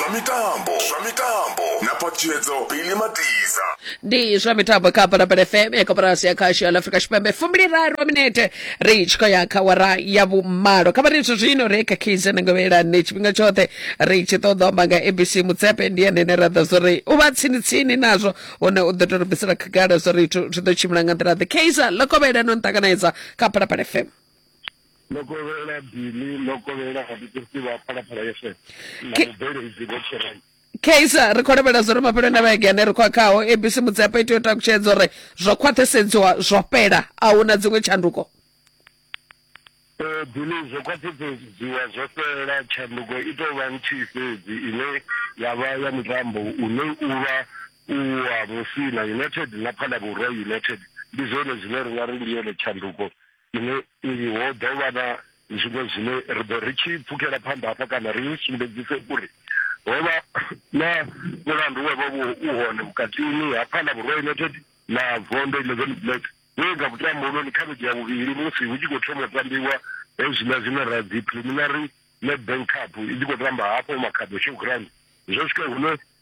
zwa mitambo zwa mitambo na patshedzo bili matiza ndi zwa mitambo kha balabala fm ya koporasi ya khasho ya afrika tshipembe fumbiliraru minete ri tshi khou ya kha wara ya vhumalo kha vhari zwino ri khakhize nangovhelani tshifhinga tshoṱhe ri tshi ṱoḓa amba nga abc mutsepe ndi ene ne ra ḓa zwori u vha tsini-tsini nazwo hone u ḓo to ri bvisela khagala zwori zwi ḓo tshimbila nga nḓila ḓe kaiser ḽo kovhelano nṱanganedza kha balabala fm ndo kovhelela bili ndo kovhelela vhathuthusi vha phalaphala yeswe na Ke- mubveledzi vho tshirai kaiser ri khou lavhelela zwo ri mafheloni a vhege ane ri khou a khaho abc mudzepa i tea u takutshedza uri zwo khwaṱhisedziwa zwo fhela a hu na dziṅwe tshanduko Eh, bili zwo khwaṱhisedziwa zwo fhela tshanduko i tou vha nthihi fhedzi ine ya vha ya mutambo une u vha u wa musina united na phalabura united ndi zwone zwine ri nga ri ndi yone tshanduko Iwe uyu ho ḓo vha na zwiṅwe zwine ri ḓo ri tshi pfukela phanḓa hafha kana ri ni sumbedzise uri ho vha na mulandu wa vha vho u hone vhukatini ha Phala Vhurwa United na Vondo 11 Black we nga vhutambuloni kha vhege ya vhuvhili musi hu tshi khou thoma u tambiwa hezwiḽa zwine ra dzi preliminary Nedbank Cup i tshi khou tamba hafho Makhado Showground zwo swika hune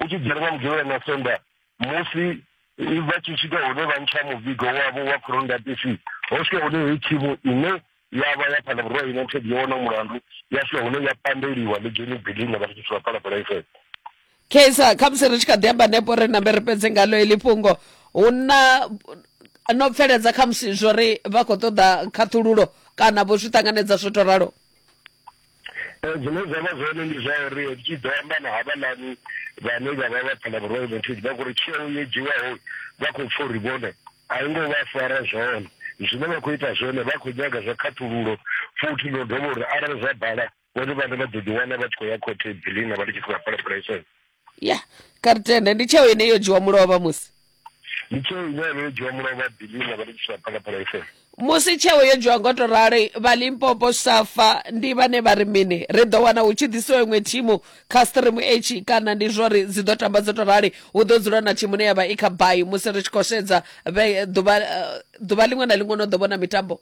u tshi dzhena vha mugevhela na sonda musi vha tshi swika hune vha ntsha muvigo wavho wa corondatisi ho swika hune heyi thimu ine ya vha ya phana vhurwa united yo wona mulandu ya swika hune ya pandeliwa ligeni bilina vha tshi swika phalaphala ifhedza kesa khamusi ri tshi kha ḓi amba nepo ri nambe ri fhedze ngalo eḽi fhungo hu na no bveledza khamusi zwo ri vha khou ṱoḓa khaṱhululo kana vho zwi ṱanganedza zwo to ralo um zwine zwa vha zwone ndi zwa uri ri tshi ḓo amba na havhalani vhane vha vha vha phana vhuroyo venthizi vha khori tsheo yo dzhiwaho vha khou pfa uri vhone a i ngo vha fara zwone zwine vha khou ita zwone vha khou nyaga zwa khaṱhululo futhi ndo dovha uri arali zwa bala vhone vhane vha ḓo ḓiwana vha tshi khou ya khothe bilina vha ndi tshi khou vha phalaphalaiso ya kha ri tende ndi tsheo ine yo dzhiwa mulovha musi ndi tsheo ine yavha yo dzhiwa mulovha bilina vha ri tshisa phalaphala fm musi tsheo yo dzhiwa ngo to rali vha limpopo safa ndi vhane vha ri mini ri ḓo wana hu tshi ḓisiwa iṅwe thimu kha stream h kana ndi zwo ri dzi ḓo tamba dzo to rali hu ḓo dzula na thimu ne ya vha i kha bai musi ri tshi khou sedza vhe- ḓuvha eh, ḓuvha liṅwe na liṅwe no ḓo vhona mitambo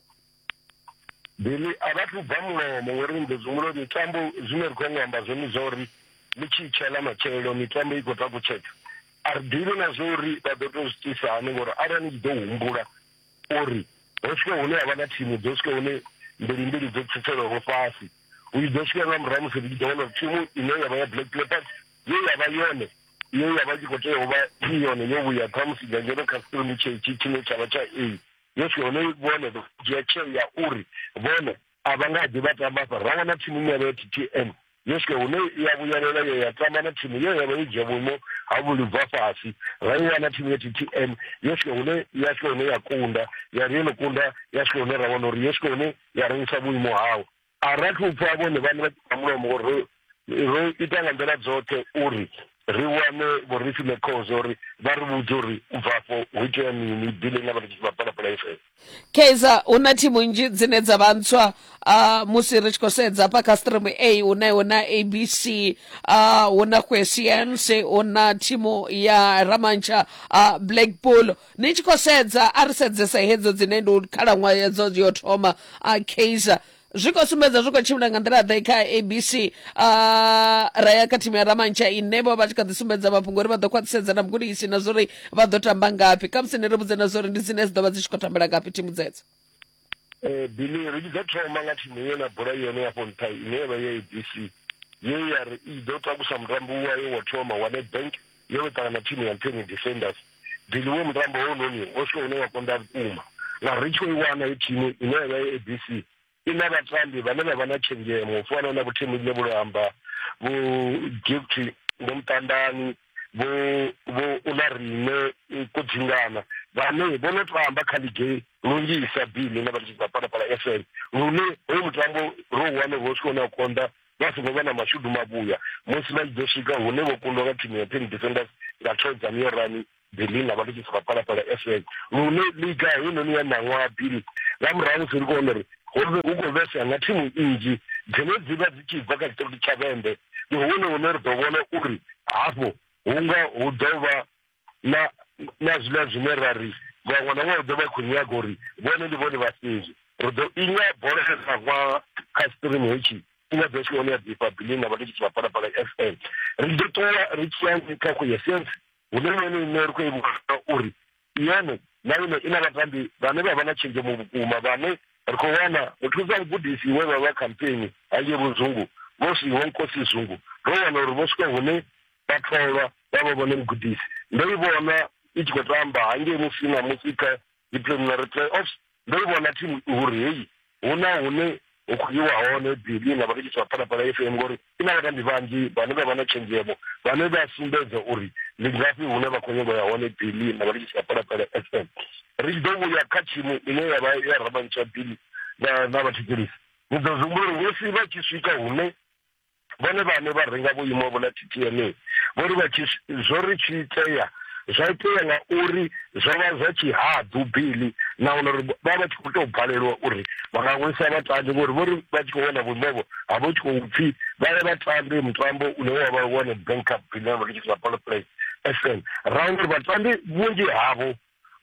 Billy a vha thu bva mulomo ngori ni ḓo zwimulo mitambo zwine ri khou nyanga amba zwone zwa uri ni tshi itshela matshelo mitambo i khou takutshedza a ri ḓivhi na zwa uri vha ḓo tou zwi tisa hani ngori arali ni tshi ḓo humbula uri ho swika hune ha vha na thimu dzo swika hune mbili mbili dzo tsitselwaho fhasi u tshi ḓo swika nga murahu musi ri tshi ḓo wana uri thimu ine ya vha ya black leopards ye ya vha yone ye ya vha tshi khou tea u vha i yone yo vhuya khamusi dzangeno kha stromi tshei tshine tsha vha tsha a Yesu hone vhone vha dzhia tsheo ya uri vhone a vha nga ḓi vha tamba hafha ra wana thimu nyavho ya ttm yeske hune ya vhuyelela yo ya tamba na thimu ye yavha yo dzhia vhuimo ha vhulibva fhasi ra i wana thimu ya ttm yeske hune ya swika hune ya kunda ya ri yo no kunda ya swika hune ra wana uri yeske hune ya rengisa vhuimo hawo a ra thu pfa vhone vhane vha ṱa mulomo ngori ro ro ita nga nḓila dzoṱhe uri ri wane vho ri file khozo uri vha ri vhudze uri u bva afho hu itea mini bile nga vha ri tshi vha palapala fm kaizer hu na thimu nnzhi dzine dza vha ntswa uh, musi ri tshi khou sedza hafha kha stream a hu na hu na abc uh, hu na quesience hu na thimu ya ramantsha uh, blackpool Ni tshi khou sedza, a ri sedzese hedzo dzine ndi khalaṅwaha yadzo yo thoma a Kaizer zwi khou sumbedza zwi khou tshimbila nga nḓila ḓe kha abc ra ya kha thimu ya ramantsha ine vho vha tshi kha ḓi sumbedza mafhungo uri vha ḓo khwaṱhisedza na mugudisi na zwori vha ḓo tamba ngafhi khamusi ni ri vhudze na zwori ndi dzine dzi ḓo vha dzi tshi khou tambela ngafhi thimu dzedzo Eh, Billy, ri tshi ḓo thoma nga thimu ye na bola yone ya fhonṱha ine ya vha ya abc ye ya ri i ḓo takusa mutambo wayo wa thoma wa nedbank yo no ṱangana thimu ya ntheni defenders Billy, wo mutambo hounoni o si une wa konḓa vhukuma ngauri ri tshi khou i wana i thimu ine ya vha ya abc i na vhatambi vhane vha vha na tshenzhemo u fana na vhothimu ḽine vho amba vho gifty vho muṱandani vho vho ula rine ko dzingana vhane vho no tou amba kha ligi lunzhisa bini na vhathu vha palapala fm lune hoyu mutambo ro wane ro swika hune a konḓa vha songo vha na mashudu mavhuya musi vha tshi ḓo swika hune vho kundwa nga thimu ya ten defenders nga thoedza niyo rani berlin avha nditshi sika palapala fm lune liga heinoni ya ṋaṅwaha bili nga murahu musi ri kone uri hove hu khou vhesa nga thimu nnzhi dzine dzi vha dzi tshi bva kha tshiṱiriti tsha vhembe ndi hone hune ri ḓo vhona uri hafho hunga hu ḓo vha na na zwiḽa zwine ra ri vhaṅwe na vhaṅwe ḓo vha khou nyaga uri vhone ndi vhone vhafhedzi ri ḓo inya bola ya sa vha kha stream hetshi ina ḓo tshone ya ḓifha bilini na vhatekisi vha phalaphala f m ri ḓo ṱuwa ri tshiyanzi kha khuyesence hune nene ine ri khou i vhona uri iyone ḽaine i na vhatambi vhane vha vha na tshenzhemo vhukuma vhane ri khou wana muthusa mugudisi we vha vha khampeni hange vhuzungu vho siho nkosi zungu ro wana uri vho swika hune vha tholwa vha vha vhone mugudisi ndo i vhona i tshi khou tamba hange musi na musi kha dzi preliminary playoffs ndo i vhona thimu uri heyi hu na hune hu khou yiwa hone bili na vhathetshetshi vha phalaphala fm ngori i na vhatambi vhanzhi vhane vha vha na tshenzhemo vhane vha sumbedza uri ndi ngafhi hune vha khou nyanga ya hone bili na vhathetshetshi vha phalaphala fm ri tshi ḓo vhuya kha thimu ine ya vha ya ramantsha bili na vhathetshelisi ni ḓo zwi humbula uri musi vha tshi swika hune vhone vhane vha renga vhuimo vho na ttma vho ri vha tshi zwo ri tshi itea zwa itea nga uri zwo vha zwa tshihaḓu bili na wana uri vha vha tshi khou tou balelwa uri vha nga wisa vhatambi ngori vho ri vha tshi khou wana vhuimovo ha vho tshi khou pfhi vha ye vhatambi mutambo une wa vha wane bank up bile vha tshi sa polo play fm ra wana uri vhatambi vhunzhi havho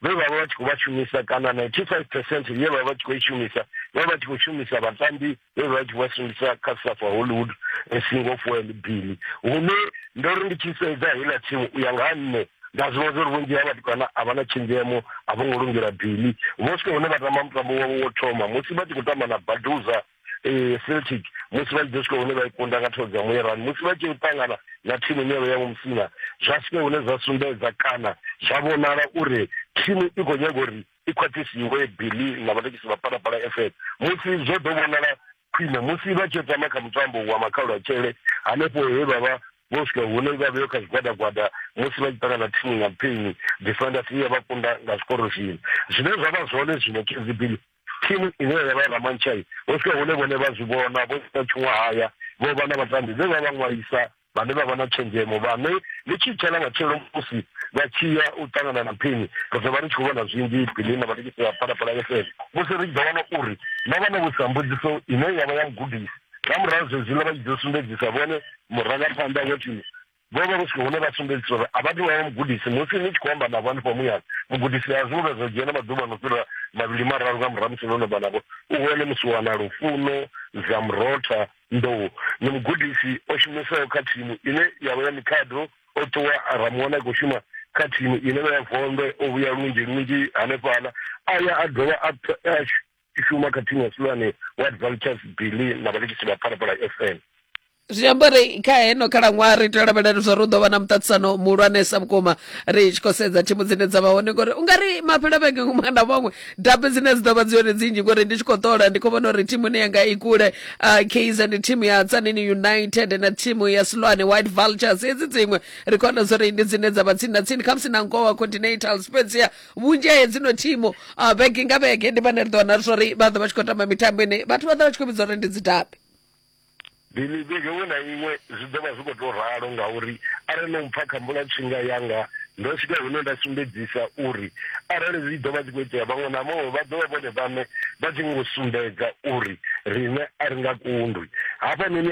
vhe vha vha vha tshi khou vha shumisa kana 95 percent ye vha vha tshi khou i shumisa vha vha tshi khou shumisa vhatambi vhe vha tshi vha shumisa kha safa hollywood eh, single foel billy hune ndo ri ndi tshi sedza heiḽa thimu u ya nga ha nṋe nda zwi vhona uri vhunzhi ha vhathu kana a vha na tshenzhemo a vho ngo lungela billy vho swika hune vha tamba mutambo wavho wo thoma musi vha tshi khou tamba na baduza eh, celtic musi vha tshi ḓo swika hune vha i kunda nga thoro dza muyerani musi vha tshi ṱangana na thimu ine vha ya mumsina zwa swike hune zwa sumbedza kana zwa vhonala uri thimu i khou nyaga uri i khwaṱhisiwe bili na vharekisi vha palapala f m musi zwo ḓo vhonala khwine musi vha tshi tama kha mutambo wa makhaulu a tshele hanefho he vha vha vho swika hune vha vheyo kha zwigwadagwada musi vha tshi ṱangana na thimu ya mpini defenders iya vha kunda nga zwikorofini zwine zwa vha zwone zwino kzbili thimu ine ya vha ramanchai ho swika hune vhone vha zwi vhona vho ita tshiṅwahaya vho vha na vhatambi vhe vha vha ṅwalisa vhane vha vha na tshenzhemo vhane ni tshi tsha na matshelo musi vha tshi ya u ṱangana na phini ri ḓo vha ri tshi khou vhona zwinzhi phini na vhatekisi vha phalaphala fm musi ri tshi ḓo wana uri na vha na vhusa mbudziso ine ya vha ya mugudisi nga murahu zwezwiḽa vha tshi ḓo sumbedzisa vhone murangaphanḓa wa thimu vho vha vho swika hune vha sumbedzisa uri a vha tou vha mugudisi musi ni tshi khou amba navho hanefha muyani mugudisi a zwiṅwe zwa dzhena maḓuvha no fhira mavhili mararu nga murahu musi no no vha navho u hone musi wana lufuno dza murotha nḓou ni mugudisi o shumisaho kha thimu ine ya vha ya mikhado o ṱuwa a ramuwana i khou shuma kha thimu ine vha ya vondwe o vhuya lunzhi lunzhi hanefhaḽa a ya a dovha a i shuma kha thimu ya silwane white vultures billy na vhalikisi vha phalaphala fm zwi amba uri kha heno khalaṅwaha ri tea u lavhelela zwa ri u ḓo vha na muṱaṱisano muhulwanesa vhukuma ri tshi khou sedza thimu dzine dza vha hone ngori u nga ri mafhelo vhege muṅwe na muṅwe dabe dzine dzi ḓo vha dzi yone dzi nnzhi ngori ndi tshi khou ṱola ndi khou vhona uri thimu ine yanga i kule uh, kz ndi thimu ya tsanini united na thimu ya silwane white vultures hedzi dziṅwe ri khou wana zwa uri ndi dzine dza vha tsini na tsini khamusi na ngowa continental spezia vhunzhi ha hedzi no thimu ah, vhege nga vhege ndi vhane ri ḓo wana zwori vha ḓo vha tshi khou tamba mitambo ine vhathu vha ḓo vha tshi khou vhidza uri ndi dzidabi bili vhege iṅwe na iṅwe zwi ḓo vha zwi khou tou ralo ngauri arali no mpfa kha mbula tshinga yanga ndo swika hune nda sumbedzisa uri arali zwi ḓo vha zwi khou itea vhaṅwe na vhaṅwe vha ḓovha vhone vhane vha tshi ngo sumbedza uri riṋe a ri nga kundwi hafhanoni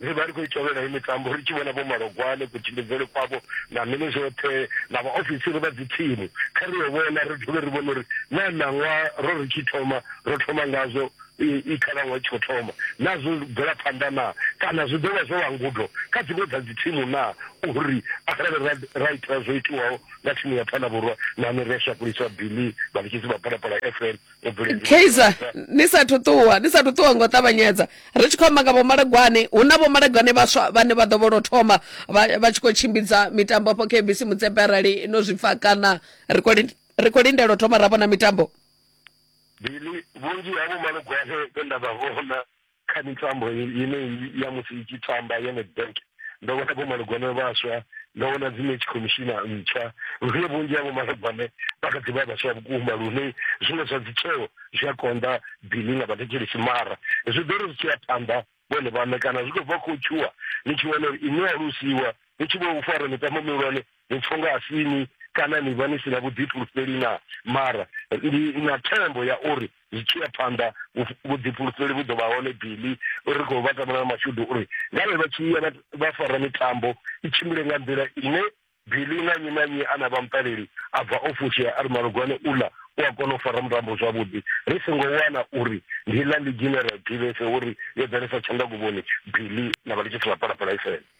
Ri vha ri khou i tovhela heyi mitambo ri tshi vhona Vho Malogwane, kutshimbidzele kwavho na mini zwoṱhe na vhaofisiri vha dzithimu. Kha ri yo vhona ri dovhe ri vhone uri naa ṋaṅwaha ro ri tshi thoma ro thoma ngazwo i khalaṅwaha i tshi khou thoma naa zwo bvela phanḓa naa kana zwi ḓo vha zwo vha ngudo kha dziṅwe dza dzithimu naa uri arali ra ra ita zwo itiwaho nga thimu ya Thanavhurwa nahone ri a shakuliswa Billy vhalikisi vha Phalaphala FM kaizer ni sathu ṱuwa ni sathu ṱuwa ngo ṱavhanyedza ri tshi khou amba nga vhomalagwane hu na vhomalagwane vhaswa vhane vha ḓo vho lwo thoma vha tshi khou tshimbidza mitambo afho kbc mutsepe arali no zwi pfa kana ri khou lindela u thoma ra vhona mitambo bili vhunzhi ha vhomalagwane vhe nda vha vhona kha mitambo ine ya musi i tshi tamba ya nedbank ndo vhona vho malugwane vhaswa ndo vhona dzi match commissioner ntswa lune vhunzhi havho malugwane vha kha ḓivha vhaswa vhukuma lune zwiṅwe zwa dzitsheo zwi a konḓa bili nga vhathetshelesi mara zwi ḓo ri zwi tshi ya phanḓa vhone vhaṋe kana zwi khou bva khou tshuwa ni tshi wana uri inwe alusiwa ni tshi vho fara mitambo mihulwane ni pfa unga a si ni kana ni vha ni si na vhuḓifulufheli na mara ndi na thembo ya uri zwi tshi ya phanḓa vhuḓifulufheli vhu ḓo vha hone bili ri khou vha tamela mashudu uri ngavhe vha tshi ya vha fara mitambo i tshimbile nga nḓila ine bili na nnyi na nnyi a na vha muṱaleli a bva o fushea a ri malugwane uḽa u a kona u fara mutambo zwavhuḓi ri songo wana uri ndi ḽa ligi ine ra ḓivhese uri yo ḓalesa tshanḓaguvhoni bili na vha litshisi vha phalaphala ifela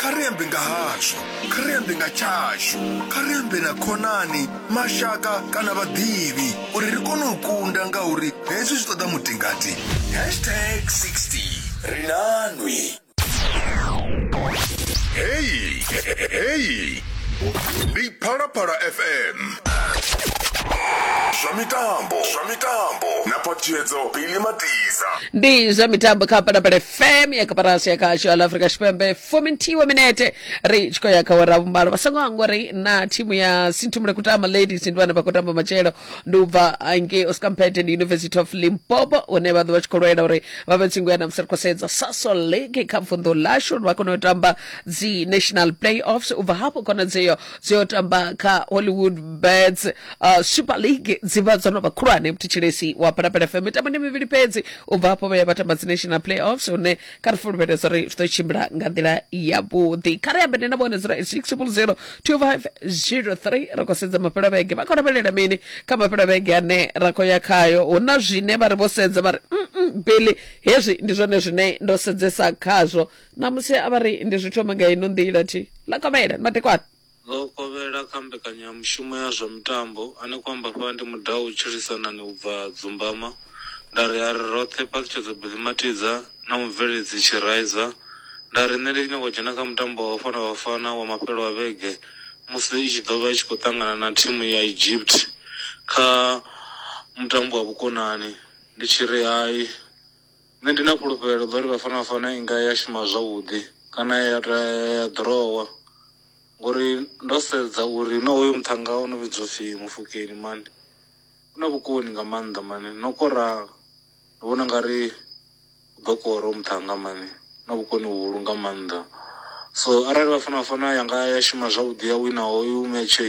Kha ri ambe nga hazwo. Kha ri ambe nga tshashu. Kha ri ambe na khonani, mashaka kana vhaḓivhi uri ri kone u kunda ngauri hezwi zwi ṱoḓa mutingati. Hashtag 60. Ri na nwi. Heyi, heyi. Ndi Phalaphala FM. Zwa mitambo, zwa mitambo. Na phaṱhutshedzo Billy Matiza. ndi zwa mitambo kha palapala fm ya kaparasi ya kasho ya la afrika tshipembe fomentiwe minete ri tshi khou ya kha wera vhumbalo vha songo hangwa ri na thimu ya sinthumule kutama ladies ndi vhane vha khou tamba matshelo ndi u bva ngei oscar mpete ndi university of limpopo hune vha ḓo vha tshi khou lwela uri vha vhe tsingo ya namusi ri khou sedza saso league kha vunḓu lashu uri vha kone u tamba dzi national playoffs u bva hafho khonadzeyo dzi yo tamba kha hollywood bets uh, super league dzi vha dzo no vha khulwane mthetshelesi wa phalaphala fm mitambo ndi mivhili fhedzi u bva hafho vha ya vha tamba dzi national playoffs hune kha ri fulufhedza uri zwi ḓo tshimbila nga nḓila yavhuḓi kha ri ambe ndi na vhone 08600 2503 ri khou sedza mafhelo a vhege vha khou lavhelela mini kha mafhelo a vhege ane ra khou ya khayo hu na zwine vha ri vho sedza vha ri mm bili hezwi ndi zwone zwine ndo sedzesa khazwo ṋamusi a vha ri ndi zwi thoma nga ino nḓila thi ḽa kovhela ni madekwana ḽo kovhela kha mbekanyamushumo ya zwa mitambo ane kwa amba fha ndi mudau u tshilisanani u bva dzumbama nda ri a ri roṱhe phaṱhutshedzo billy matidza na mubveledzi tshiraiza nda ri nṋe ndi tshi nyanga u dzhena kha mutambo wa vhafana vhafana wa mafhelo a vhege musi i tshi ḓo vha i tshi khou ṱangana na thimu ya egypt kha mutambo wa vhukonani ndi tshi ri hai Nṋe ndi na fhulufhelo ḽa uri Bafana Bafana i nga ya shuma zwavhuḓi kana ya ta ya ḓorowa ngori ndo sedza uri na hoyo muthannga o no vhidzwa u pfhi Mofokeng mani u na vhukoni nga maanḓa mani na u kora ndi vhona u nga ri u ḓo kora hoyu muthannga mani u na vhukoni vhuhulu nga maanḓa. So arali Bafana Bafana ya nga ya shuma zwavhuḓi ya wina hoyu metshe.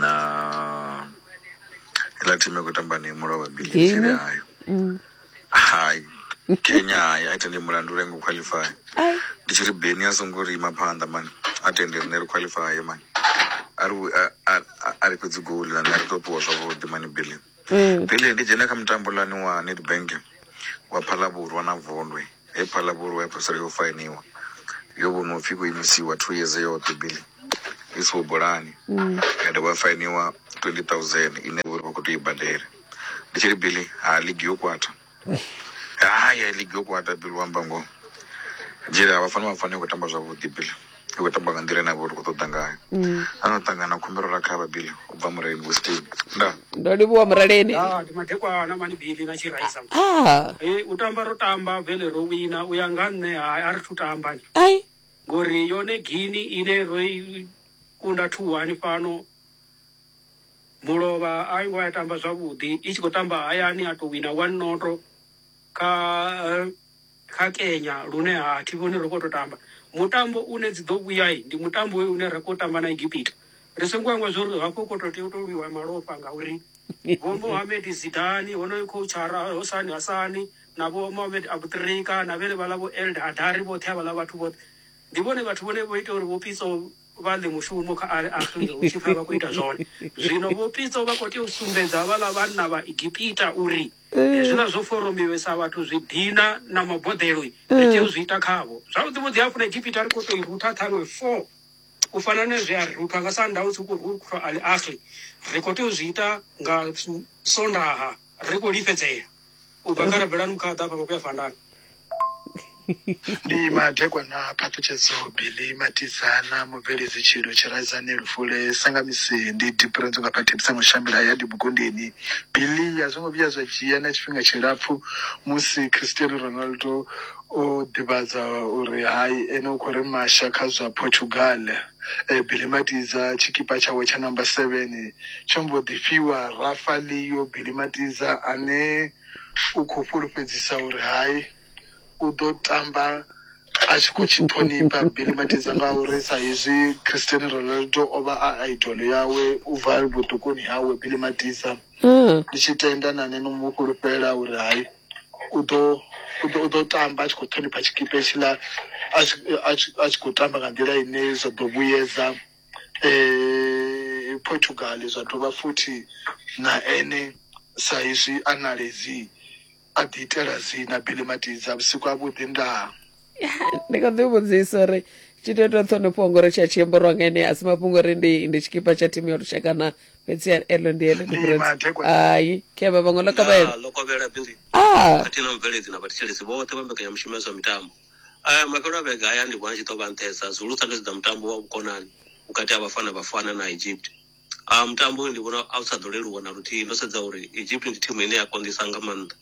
na iḽa thimu khou tamba ni mulo wa bili tsele ayo mm. hai kenya hai a tende mulandu lengo qualify ndi tshi ri beni a songo ri ima phanḓa mani a tende rine ri qualify mani a ri fhedzi goli na nṋe ri tou ṱuwa zwavhuḓi mani bili mm. bili ndi dzhena kha mutambo lani wa nedbank wa phalavhurwa na vondwe He phaḽa vholoho ya fhedzisela yo fainiwa yo vhonwa upfhi khou imisiwa two yeze yoṱhe bili i siho bolani ya dovha ya fainiwa twenty thousand ine uri vha khou tea u i badela ndi tshi ri bili ha ligi yo kwata haya ligi yo kwata bili wa amba ngoho dzhele ha vha fani vha fani khou tamba zwavhuḓi bili. Ri khou tamba nga nḓila ine a vha uri ri khou ṱoḓa ngayo. A no ṱangana na khumbelo ra kha vha Billy u bva Mureleni Vho Steyn. Nda. Ndo livhuwa Mureleni. Ah, ndi madekwana mani Billy na tshi raisa. Ah. Hey, u tamba ro tamba vele ro wina u ya nga nṋe hai a ri thu tamba ni. Ai. Ngori yone gini ine ro i kunda thu hani fhano mulovha a ngo ya tamba zwavhuḓi i tshi khou tamba hayani a to wina one noto kha kha Kenya lune ha thi vhoni ri khou tou tamba mutambo une dzi ḓo vhuya ndi mutambo hoyu une ra khou tamba na Egipita ri songo hangwa zwo ri hafho khou tou tea u tou lwiwa malofha ngauri vho Mohamed Zidane honoyo khouchara Hosani Hasani na vho Mohamed Abutrika na vhene vhaḽa vho Eld Adari vhoṱhe havhaḽa vhathu vhoṱhe ndi vhone vhathu vhone vho ita uri vho Pitso vha ḽe mushumo kha Al Ahly hu tshi pfha vha khou ita zwone zwino vho Pitso vha khou tea u sumbedza havhaḽa vhanna vha Egipita uri Hezwiḽa zwo foromiwe sa vhathu zwi dina na maboḓelo ri tea u zwi ita khavho. Zwavhuḓi vhuḓi hafhu na Egipita ri khou tou i rutha ṱhaṅwe four u fana na zwe a ri ruthwa nga Sanda hu tshi khou ruthwa Al Ahly. Ri khou tea u zwi ita nga Sondaha ri khou lifhedzea u bva kha Rabelani Mukhaḓa hafha vha khou ya Fandani. ndi madekwana a phaṱhutshedzo bili matidzana mubveledzi tshilo tshiradzani lufule sangamisi ndi dipurenzo nga phathipisa mushambila ya dibukundini bili a zwo ngo vhuya zwa dzhia na tshifhinga tshilapfu musi cristiano ronaldo o ḓivhadza uri hai ene u khou ri masha kha zwa portugal e, bili matidza tshikipa tshawe tsha namba 7 tsho mbo ḓi fhiwa rafa leo bili matidza ane U khou fhulufhedzisa uri hai, u ḓo tamba a tshi khou tshi ṱhonifha Billy Matiza ngauri sa hezwi Cristiano Ronaldo o vha a idol yawe u bva vhuṱukuni hawe. Billy Matiza, Ndi tshi tenda na nṋe no mu fhulufhela uri hai, u ḓo u ḓo tamba a tshi khou ṱhonifha tshikhipa hetshiḽa a tshi khou tamba nga nḓila ine zwa ḓo vhuyedza eh, portugal zwa dovha futhi na ene sa izwi a naledzi a ḓi itela dzina billy matidza vhusiku a vhuḓi ndaa ndi kho ḓi vhudzisa uri tshithu ita ṱhonifho ngori tsha tshiembo rwa nga ene a si mafhungo uri ndi ndi tshikipa tsha thimu ya lushaka na fhedzi elo ndi elo hai kheva vhaṅwe lokovhela lokovhela bili a ah. khathihi na mubveledzi na vhathetshelesi vhoṱhe vha mbekanyamushumo ya zwa mitambo Aya mafhelo a vhege aya ndi vhona a tshi ḓo vha nṱhesa zwihulu sa ndo sedza mutambo wa vhukonani vhukati ha vhafana vhafana na egypt Ah, mutambo uyu ndi vhona a u sa ḓo leluwa na luthihi ndo sedza uri egypt ndi thimu ine ya konḓisa nga maanḓa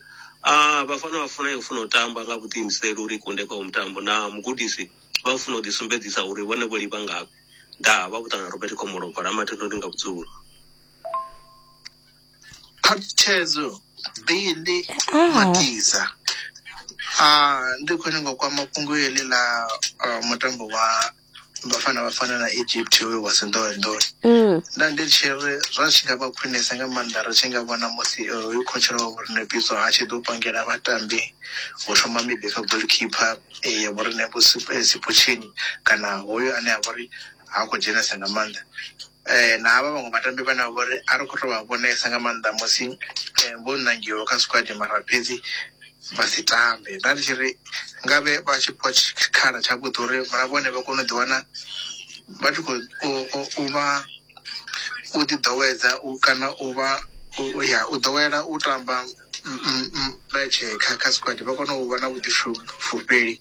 Ah, vhafana vha funa yo funa u tamba nga vhuḓiimiseli uri i kunde kwa mutambo na mugudisi vha funa u ḓisumbedzisa uri vhone vho livha ngavhe ndaa vha vhuṱana robert khomolobva la mathendo ndi nga vhudzulo Khathedzo Billy Ah. Matiza. Ah, ndi khou nyanga u kwama fhungo heḽi ḽa ah, mutambo wa Bafana Bafana na Egypt hoyo wa Sindowendoni. Mm. nda ndi tshi ri zwa tshi nga vha khwinesa nga maanḓa ri tshi nga vhona musi eh, hoyu khotshela wa vhorine bidzo a tshi ḓo pangela vhatambi u thoma miḓi kha goalkeeper eh, ya vhorine sipotshini kana hoyo ane a vha uri ha khou dzhenesa nga maanḓa na havha vhaṅwe vhatambi vhane vha vhori a ri khou tou vha vhonesa nga maanḓa musi vho ṋangiwa kha squad mara fhedzi vha si tambe nda ndi tshi ri nga vhe vha tshi fhiwa tshikhala tshavhuḓi uri na vhone vha kone u ḓiwana vha tshi khou vha u ḓi ḓowedza u kana u vha ya u ḓowela u tamba metshe kha kha squad vha kone u vha na vhuḓifulufheli.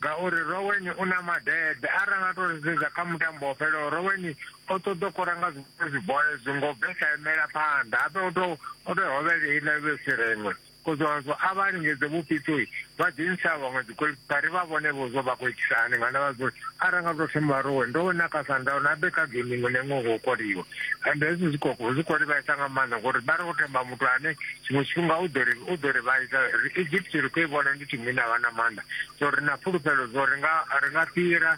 ngauri Rowen u na madede arali nga to sedza kha mutambo wo fhelaho Rowen o ṱoḓa u kora nga zwiṅwe zwibola ezwi ngo bve sa imela phanḓa ape o to o to hovhele iḽa iwe sireṅwe kozwanzwo a vha lingedze vhupitsoi vha ḓi ntsha vhaṅwe dzigolikipa ri vha vhone vho zwo vha khou itisa hani nga ndavha zwo arali nga to thoma Rowen ndo wena kha Sandown abe kha gaming nengo ho koliwa ende hezwi zwi khou zwi khou livhaisa nga maanḓa ngori vha ri khou themba muthu ane Tshiṅwe tshifhinga u ḓo ri u ḓo ri vhaisa ri Egypt ri khou i vhona ndi thimu ine vha na maanḓa so ri na fhulufhelo zwo ri nga ri nga fhira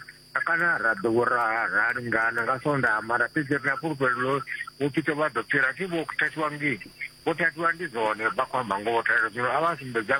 kana ra ḓo ra ra lingana nga sonda mara fhedzi ri na fhulufhelo ḽo vho pito vha ḓo fhira thi vho thathiwa ngei vho thathiwa ndi zwone vha khou amba ngoho thathiwa zwino a vha sumbedza